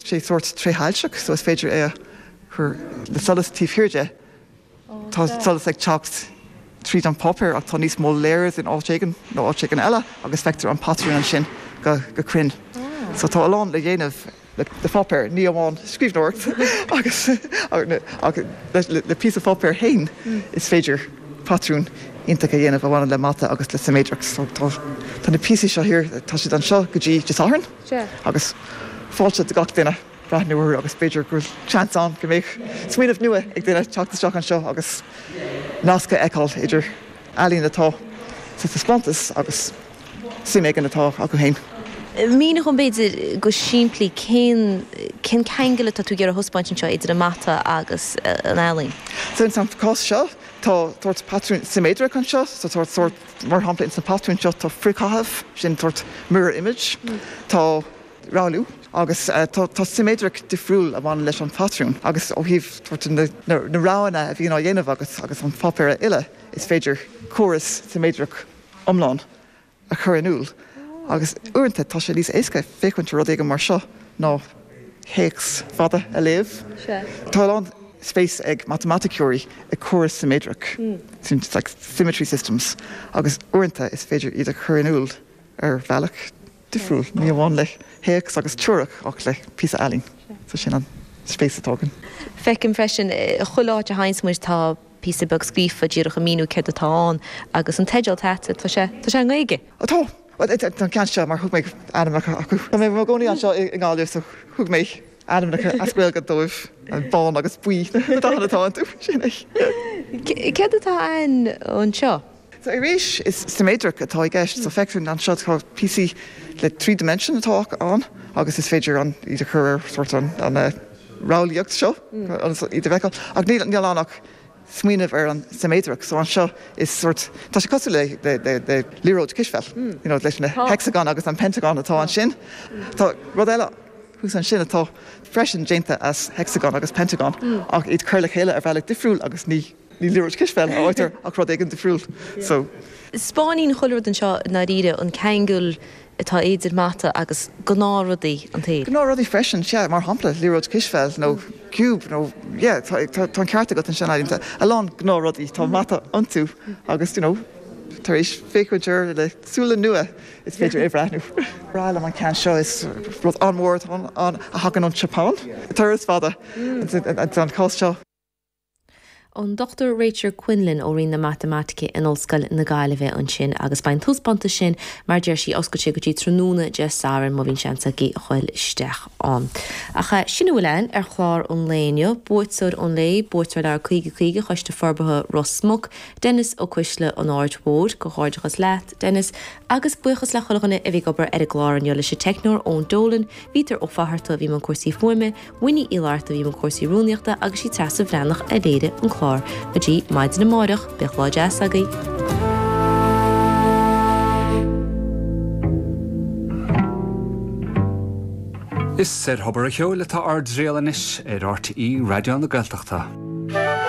sé sórt tréshoilteach so is féidir é a chur le solas taobh thiar de. Tá an solas ag teacht tríd an pháipéar ach tá níos mó layers in áit éigin nó áit éigin eile agus feictear an patrún ansin go cruinn. So tá a lán le dhéanamh le pháipéar, ní amháin scríbhneoireacht agus ach le píosa páipéar féin is féidir patrún iontach a dhéanamh a bhaineann le mata agus le siméadracht. So tá na píosaí seo, tá siad anseo go dtí Dé Sathairn. Sea. Agus fáilte do gach duine breathnú orthu agus b'fhéidir go bhfuil seans ann go mbeadh smaoineamh nua ag duine teacht isteach anseo agus nasc a fheiceáil idir ealaín atá sa taispeántas agus suim éigin atá acu féin. Mínigh dhom, b'fhéidir, go simplí cén ceangal atá tú ag iarraidh a thaispeáint anseo idir an mata agus an ealaín. Sa chás seo tá sórt patrún siméadrach anseo, sórt Mar shampla, ins na patrúin seo tá frithchaitheamh, sin sórt mirror image, tá rothlú agus tá siméadracht difriúil a bhaineann leis an phatrún agus ó thaobh na roghanna a bhí á dhéanamh agat agus an páipéar á fhilleadh is féidir córas siméadrach iomlán a chur in iúl agus uaireanta tá sé níos éasca féachaint ar rud éigin mar seo ná théacs fada a léamh. Tá a lán spéis ag matamaiticeoirí ag córais siméadrach, symmetry systems, agus uaireanta is féidir iad a chur in iúl ar bhealach difriúil, ní amháin le théacs agus teoiric ach le píosa ealaíne. So sin an spéis atá againn. Feicim freisin, chuile áit a sheasann muid tá. píosa beag scríofa díreach ag míniú céard atá ann agus an teideal atá, tá sé, tá sé i nGaeilge. Tá, an ceann seo mar thug mé ainmneacha orthu. Tá mé i mo gcónaí anseo i nGaillimh so thug mé ainmneacha as Gaeilge dóibh, bán agus buí na dathanna atá iontu, sin é. Céard atá ann anseo? So arís, is siméadracht atá i gceist. So feicimid anseo tá píosaí le three dimension atá ann agus is féidir an iad a chur ar sórt an an rothlaíocht seo agus iad a bhfeiceáil. Ach níl níl ann ach smaoineamh ar an siméadracht. So anseo is sórt tá sé cosúil le le le le liathróid cispheil you know leis na hexagon agus an pentagon atá ansin. Tá rud eile thuas ansin atá freisin déanta as hexagon agus pentagon ach iad cur le chéile ar bhealach difriúil agus ní liathróid cispheil a fhaightear ach rud éigin difriúil. So spáineann chuile rud anseo i ndáiríre, an ceangal atá idir mata agus gnáthrudaí an tsaoil. Gnáthrudaí freisin, sea, mar shampla, liathróid cispheil nó ciúb nó, yeah, tá an ceart agat ansin uaireanta, a lán gnáthrudaí, tá mata iontu agus, you know, tar éis féachaint air le súile nua is féidir é a bhreathnú. Is breá liom an ceann seo, is rud an-mhór atá ann a thagann ón tSeapáin, turas fada don chás seo. ón Dr Rachel Quinlan ó Roinn na Matamaitice in Ollscoil na Gaillimhe ansin agus beidh an taispeántas sin, mar a deir sí, oscailte go dtí tráthnóna Dé Sathairn, má bhíonn seans agaibh a dhul isteach ann. Ach sin a bhfuil ann ar chlár an lae inniu. Buaiteoir an lae, buaiteoir Leabhar Caoga Caoga Choiste Forbartha Ros Muc, Denis Ó Cuisle, An Aird Mhóir, Comhghairdeachas leat, Denis, agus buíochas le chuile dhuine a bhí ag obair ar an gclár inniu, leis an teicneoir Eoin Dolan, Peadar Ó Fátharta a bhí i mbun cúrsaí fuaime, Winnie Uí Fhlatharta a bhí i mbun cúrsaí rúnaíochta agus sí Treasa Bhreathnach a léirigh an clár. Go dtí maidin amáireach, bíodh lá deas agaibh! Is ar Thobar a' Cheoil atá ár dtriall anois ar RTÉ Raidió na Gaeltachta.